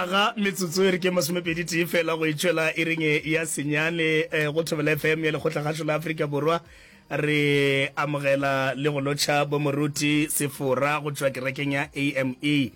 aga metsotso e re ke masomepedi tee fela go itšwela e reng e ya senyane eh, go thobela fm ya lekgotla gašo la aforika borwa re amogela le go lotšha bomoruti sefora go tšwa kerekeng ya ame um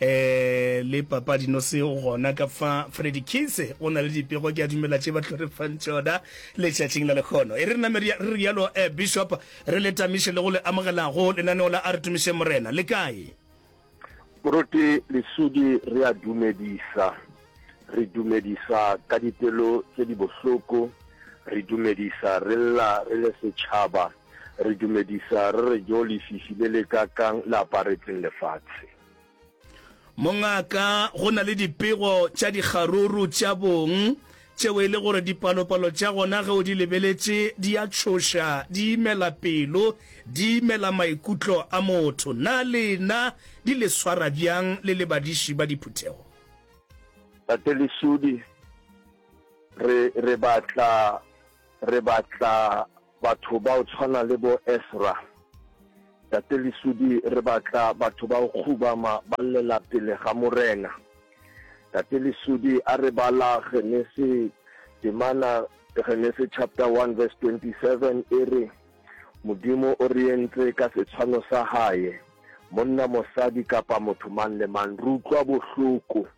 eh, le papa dinose gona ka fa fredi kise o na le dipego ke a dumela tše ba tlhorefang tšona letšatšing la lekgono e re re name re rialo eh, bishop re le tamiše le go le amogelago lenaneo la a re tumišeng morena le kae Moruti Lesudi re a dumedisa. Re dumedisa ka dipelo tse di bohloko, re dumedisa re lla re le setšhaba, re dumedisa re re jo lefifi le le ka kang le aparetseng lefatshe. Mongaka go na le dipego tša dikgaruru tša bong tšeo e le gore dipalopalo tša gona ge o di lebeletše di a tšhoša, di imela pelo, di imela maikutlo a motho. Na lena di le swara bjang le le badiši ba diphuthego? Tate Lesudi, re, re batla, re batla. Batho ba o tshwana le bo Esra, Tate Lesudi, re batla batho ba go kgubama ba llela pele ga Morena. Tate Lesudi, a re bala Genese, temana Genese chapter 1 verse 27 e re, Modimo o re entse ka setshwano sa Hae, monna, mosadi, kapa motho mang le mang. Re utlwa bohloko.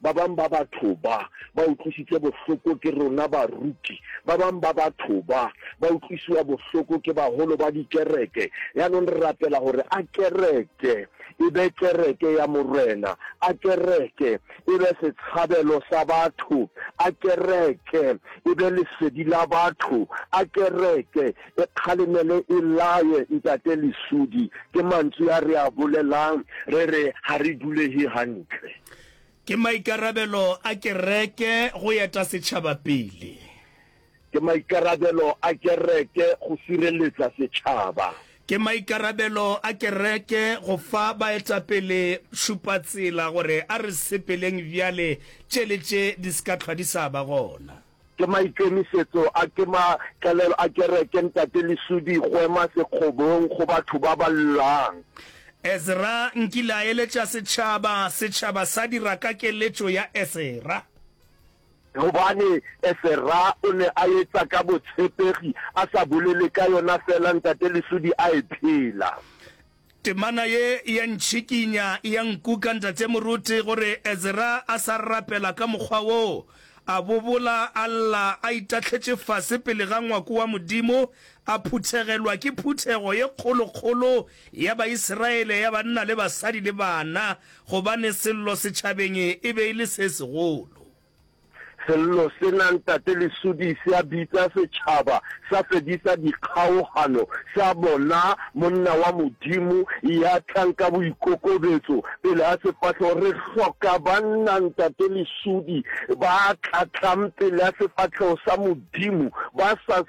Ba bang ba batho ba ba utlwisitse bohloko ke rona baruti. Ba bang ba batho ba ba utlwisiwa bohloko ke baholo ba dikereke. Yanong re rapela gore a kereke e be kereke ya Morena, a kereke e be setshabelo sa batho, a kereke e be lesedi la batho, a kereke e kgalemele e laye Ntate Lesudi. Ke mantswe a re a bolelang re re ga re dulege gantle. Ke maikarabelo a kereke go eta setšhaba pele. Ke maikarabelo a kereke go sireletsa setšhaba. Ke maikarabelo a kereke go fa baetapele šupatsela gore a re sepeleng bjale tše le tše di se ka hlwa di sa ba gona. Ke maikemisetso a ke ma tlelelo a kereke Ntate Lesudi Kgwema Sekgobong go batho ba ba llang. Ezra nkile a eletša setšhaba, setšhaba sa dira ka keletšo ya Esera. Gobane Esera o ne a etša ka botshepegi, a sa bolele ka yona feela Ntate Lesudi a e phela. Temana ye e a ntšhikinya, e a nkuka, Ntate Moruti, gore Ezra a sa rapela ka mokgwa wo. A bobola, a lla, a itahletše fase pele ga ngwako wa Modimo, a phuthegelwa ke phuthego ye kgolo-kgolo ya Baisiraele, ya banna le basadi le bana, gobane sello setšhabeng e be e le se segolo. Sello sena Ntate Lesudi se a bitsa setšhaba sa fedisa dikgaogano sa bona monna wa Modimo ya tlang ka boikokobetso pele ga sefahlogo. Re hloka banna, Ntate Lesudi, ba tla tlang pele ga sefahlogo sa Modimo ba sa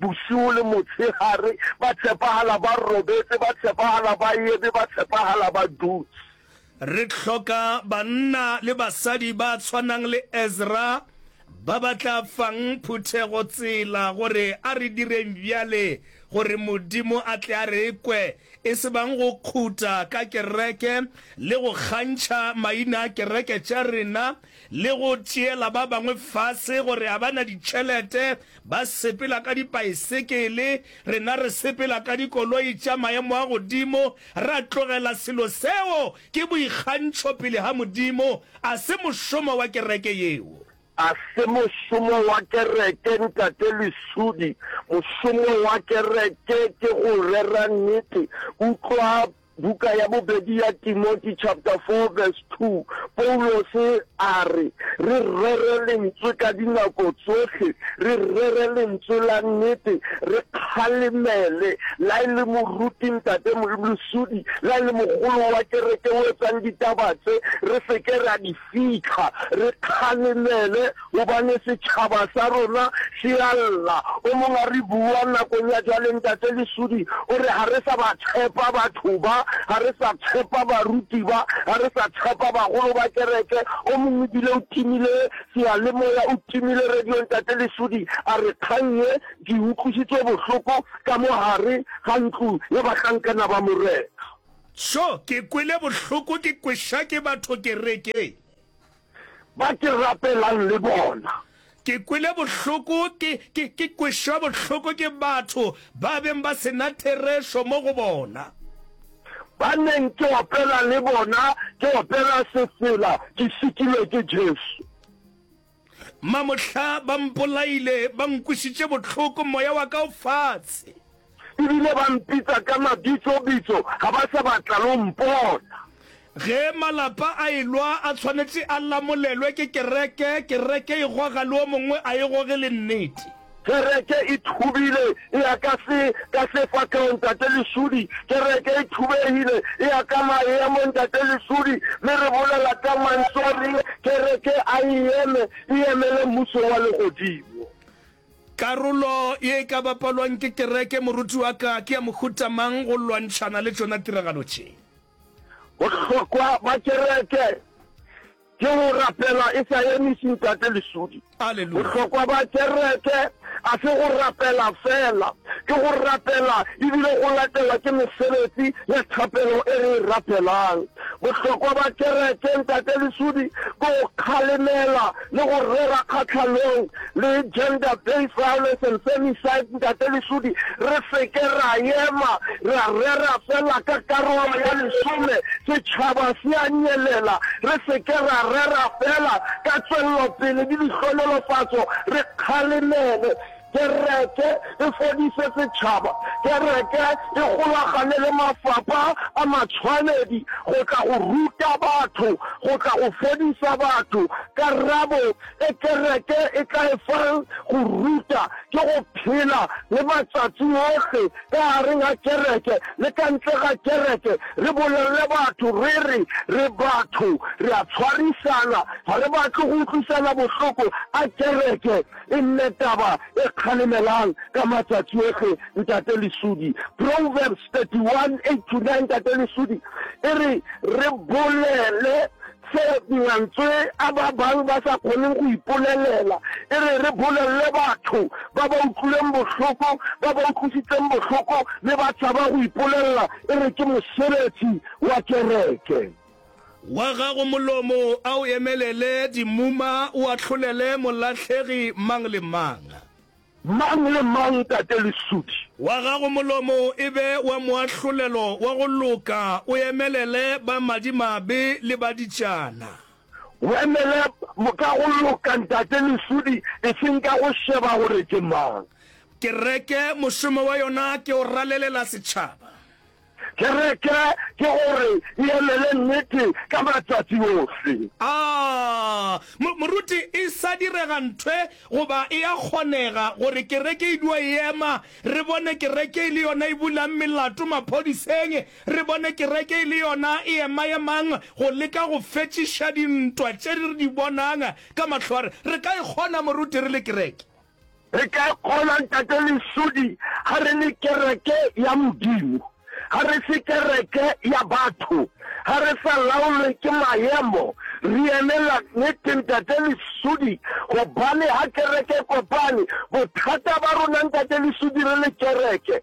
Bošego le motshegare, ba tshepagala, ba robetse, ba tshepagala, ba eme, ba tshepagala, ba dutše. Re hloka banna le basadi ba tshwanang le Ezra ba ba tla fang phuthego tsela gore a re direng bjale gore Modimo a tle a re kwe, e se bang go khuta ka kereke le go kgantšha maina a kereke tša rena le go tšeela ba bangwe fase gore ga ba na ditšhelete Ba sepela ka dipaesekele, rena re sepela ka dikoloi tša maemo a godimo. Ra tlogela selo seo. Ke boikgantšho pele ga Modimo. A se mošomo wa kereke yeo. A se mošomo wa kereke, Ntate Lesudi. Mošomo wa kereke ke go rera nnete. Utlwa Buka ya bobedi ya Timoti chapter 4 verse 2, Paulose a re, Re rere lentswe ka dinako tsohle, re rere lentswe la nnete, re kgalemele, la e le moruti, ntate, moeblosodi, la e le mogolo wa kereke o etsang ditaba tse, re se ke ra di Fihla re kgalemele gobane setšhaba sa rona se a lla. O mong a re, Bua nakong ya jwale, Ntate Lesudi. O re, Ga re sa ba tshepa batho ba. Ga re sa tshepa baruti ba. Ga re sa tshepa bagolo ba kereke. O mong e bile o timile seyalemoya, o timile radio. Ntate Lesudi a re, Kgang ye ke e utlwisitse bohloko ka mo gare ga ntlo ya bahlankana ba Morena. Tjo, ke kwele bohloko ke kweša ke batho kerekeng. Ba ke rapelang le bona. Ke kwele bohloko ke, ke, ke kwešwa bohloko ke batho ba beng ba se na therešo mo go bona. Ba neng ke opela le bona, ke opela sefela, ke šikilwe ke Jesu. Mamohla ba mpolaile, ba nkwisitše bohloko, moya wa ka o fatshe. E bile ba mpitsa ka mabitsobitso, ga ba sa batla le go mpona. Ge malapa a elwa, a tshwanetše a lamolelwe ke kereke, kereke e goga le o mongwe a e goge le nnete. Kereke e thubile, e ya ka se, ka se fa tlhoo, Ntate Lesudi. Kereke e thubegile, e ya ka maemo, Ntate Lesudi. Mme re bolela ka Mantšu a reng, Kereke a e eme, e emele Mmušo wa Legodimo. Karolo ye e ka bapalwang ke kereke, moruti wa ka, ke ya mohuta mang go lwantšhana le tšona tiragalo tše? Bohlokwa bja kereke Ke go rapela e sa emiši Ntate Lesudi. Aleluya! Bohlokwa ba kereke a se go rapela feela, ke go rapela e bile go latelwa ke mesebetsi ya thapelo e re e rapelang. Bohlokwa ba kereke, Ntate Lesudi, ke go kgalemela le go rera kgahlanong le Gender Based Violence and Femicide, Ntate Lesudi, re se ke ra ema ra rera fela ka karolo ya lesome, setšhaba se a nyelela, re se ke ra rera fela ka tšwellopele le dihlohonolofatso, re kgalemele, kereke e fodise setšhaba, kereke e golagane le mafapha a matshwanedi go tla go ruta batho, go tla go fodisa batho. Karabo. e kereke e tla efang go ruta ke go phela le matsatsi ohle ka gare ga kereke le ka ntle ga kereke, re bolelele batho re re re batho, re a tshwarisana, ga re batle go utlwisana bohloko, a kereke e nne taba e kgalemelang ka matsatsi ohle, Ntate Lesudi. Proverbs 31, 8-9, Ntate Lesudi, e re re bolele Se mantswe a ba bang ba sa kgoneng go ipolelela, e re re bolelele batho ba ba utlwileng bohloko, ba ba utlwisitseng bohloko le ba tšhaba go ipolelela, e re ke mosebetsi wa kereke. Wa gago molomo a o emelele dimuma, o ahlolele molahlegi mang le mang. Mang le mang, Tate Lesudi? Wa gago molomo e be wa moahlolelo wa go loka, o emelele ba madimabe le ba ditšana. O emele ka go loka, Ntate Lesudi, eseng ka go šeba gore ke mang. Kereke mošomo wa yona ke go ralelela setšhaba. Kereke ke gore e emele nnete ka matšatši ohle. A Moruti, e sa direga nthwe goba e a kgonega gore kereke e dio ema, re bone kereke e le yona e bulang melato maphodiseng, re bone kereke e le yona e ema-emang go leka go fetšiša dintwa tše re di bonang ka mahlo a re? Re ka e kgona, Moruti, re le kereke? Re ka e kgona, Ntate Lesodi, ga re le kereke ya Modimo. Ga re se kereke ya batho. Ga re sa laolwe ke maemo. Re emela Nnete, Ntate Lesodi, gobane ga kereke e kopane. Bothata ba rona, Ntate Lesodi, re le kereke.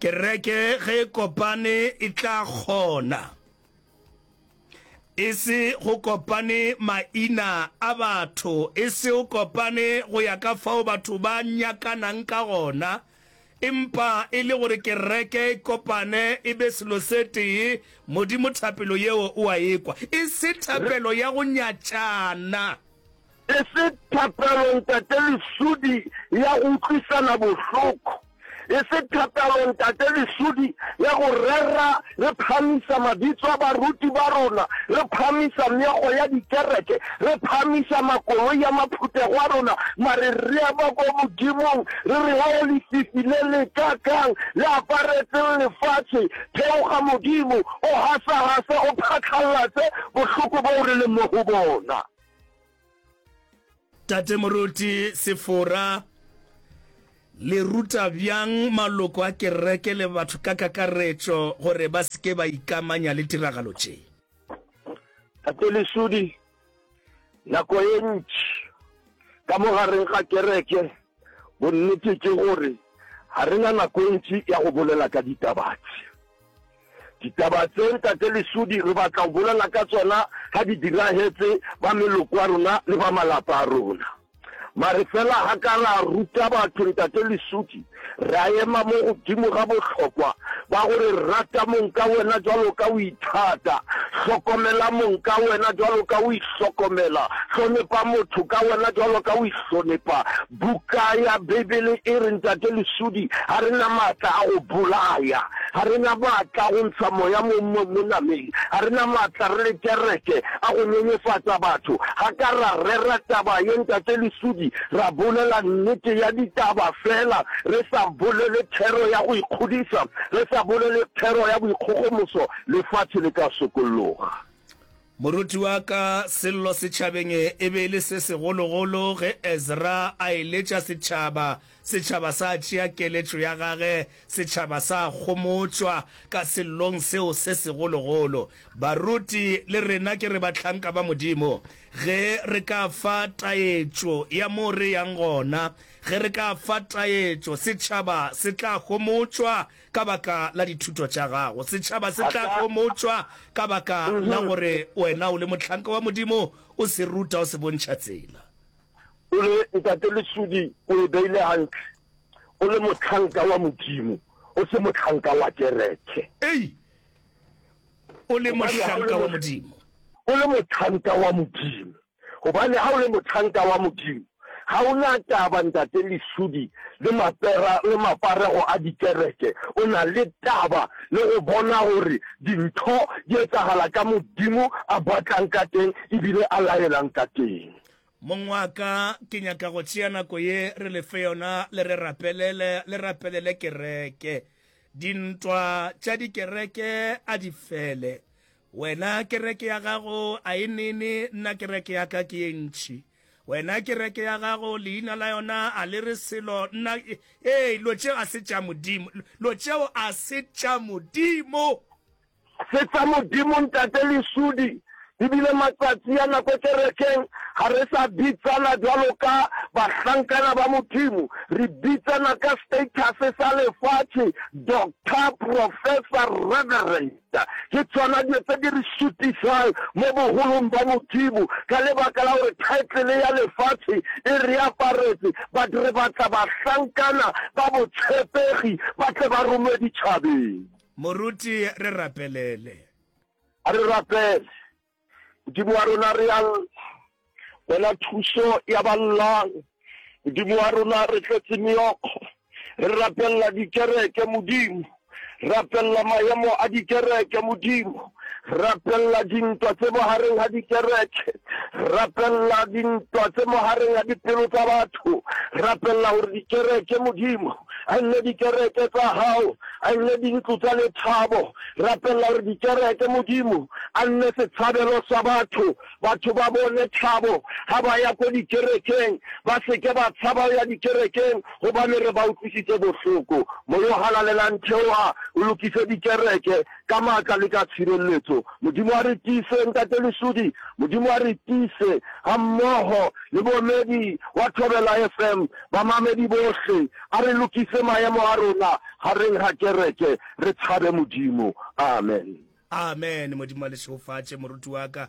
Kereke ge e kopane e tla kgona e se go kopane maina a batho, e se o kopane go ya ka fao batho ba nyakanang ka gona, empa e le gore kereke e kopane e be selo se tee. Modimo thapelo yeo o a ekwa, e se thapelo ya go nyatšana. Ke se thapelo Ntate lesudi ya go utlwisana bohloko, e se thapelo Ntate lesudi ya go rera re phahamisa mabitso a baruti ba rona, re phahamisa meago ya dikereke, re phahamisa makoloi a maphuthego a rona, mare re ema kwa Modimong re re, Hao lefifi le le ka kang le aparetseng lefatshe, theoga Modimo, o hasahase, o phatlallatse bohloko boo re leng mo go bona. tate moruti sefora le ruta bjang maloko a kereke le batho ka kakaretšo gore ba seke ba ikamanya le tiragalo tše tate lesudi nako e ntši ka mogareng ga kereke bonnete ke gore ga re na nako e ntši ya go bolela ka ditabatse Ditaba tse Ntate Lesudi re batla go bolela ka tsona ga di diragetse ba meloko ya rona le ba malapa a rona. Mare fela ga ka ra ruta batho Ntate Lesudi, ra ema mo godimo ga bohlokwa ba gore rata mong ka wena jwalo ka o ithata, hlokomela mong ka wena jwalo ka o ihlokomela, hlonepa motho ka wena jwalo ka o ihlonepa. Buka ya Beibele e re, Ntate Lesudi, ga re na matla a go bolaya. Ga re na matla a go ntsha moya mo monameng. Ga re na matla re le kereke a go nyenyefatsa batho. Ga ka ra rera taba ye, Ntate Lesudi. Ra bolela nnete ya ditaba feela, re sa bolele thero ya go ikgodisa, re sa bolele thero ya boikgogomoso. Lefatše le ka sokologa. Moruti wa ka, Sello setšhabeng e be e le se segologolo ge Ezra a eletša setšhaba. Setšhaba sa tšea keletšo ya gage, setšhaba sa kgomotšwa ka Sellong seo se segologolo. Baruti le rena ke re bahlanka ba Modimo, ge re ka fa taetšo ya moo re yang gona, ge re ka fa taetšo, setšhaba se tla kgomotšwa Ka baka la dithuto tša gago, setšhaba se tla homotšwa. Ka baka la gore wena o le mohlanka wa Modimo, o se ruta, o se bontšha tsela. O le ntate Lesudi, o e beile gantle. O le mohlanka wa Modimo, o se mohlanka wa kereke. Ei! O le mohlanka wa Modimo. O le mohlanka wa Modimo. Gobane ga o le mothanka wa Modimo, ga o na taba ntate Lesudi le mapera le maparego a dikereke, o na le taba le go bona gore dintho di etsagala ka Modimo a batlang ka teng ebile a laelang ka teng. Mong wa ka, ke nyaka go tšea nako ye re le fe yona le re rapelele, le rapelele kereke. Dintwa tša dikereke a di fele. Wena kereke ya gago a e nene, nna kereke ya ka ke ye ntši. Wena kereke ya gago leina la yona a le re selo, nna, ee, lo tšeo a se tša Modimo, lo tšeo a se tša Modimo. Se tša Modimo, Ntate Lesudi. E bile matsatsi a nako kerekeng ga re sa bitsana bjalo ka bahlankana ba Modimo, re bitsana ka status sa lefatše, Doctor, Professor, Reverend. Ke tšona dilo tse di re šutišang mo bogolong ba Modimo, ka lebaka la gore thaetlele ya lefatše e re aparetše. But re batla bahlankana ba botšhepegi ba tle ba romwe ditšhabeng. Moruti, re rapelele. A re rapele. Modimo wa rona, re a bona thuso ya ba llang. Modimo wa rona, re tletse meokgo, re rapelela dikereke, Modimo rapelela maemo a dikereke modimo rapelela dintwa tse mogareng ga dikereke rapelela dintwa tse mogareng ga dipelo tsa batho rapelela gore dikereke modimo a nne dikereke tsa gago a nne dintlo tsa lethabo Rapelela gore dikereke Modimo a nne setshabelo sa batho, batho ba bone thabo ga ba ya ko dikerekeng, ba se ke ba tshaba go ya dikerekeng gobane re ba utlwisitše bohloko. Moya o Halalelang theoga o lokise dikereke ka maatla le ka tšhireletso. Modimo a re tiise, Ntate Lesudi. Modimo a re tiise, ga mmogo le boemedi wa Thobela FM, bamamedi bohle. A re lokise maemo a rona gareng ga kereke. Re tšhabe Modimo. Amen. Amen. Modimo a le šegofatše, moruti wa ka.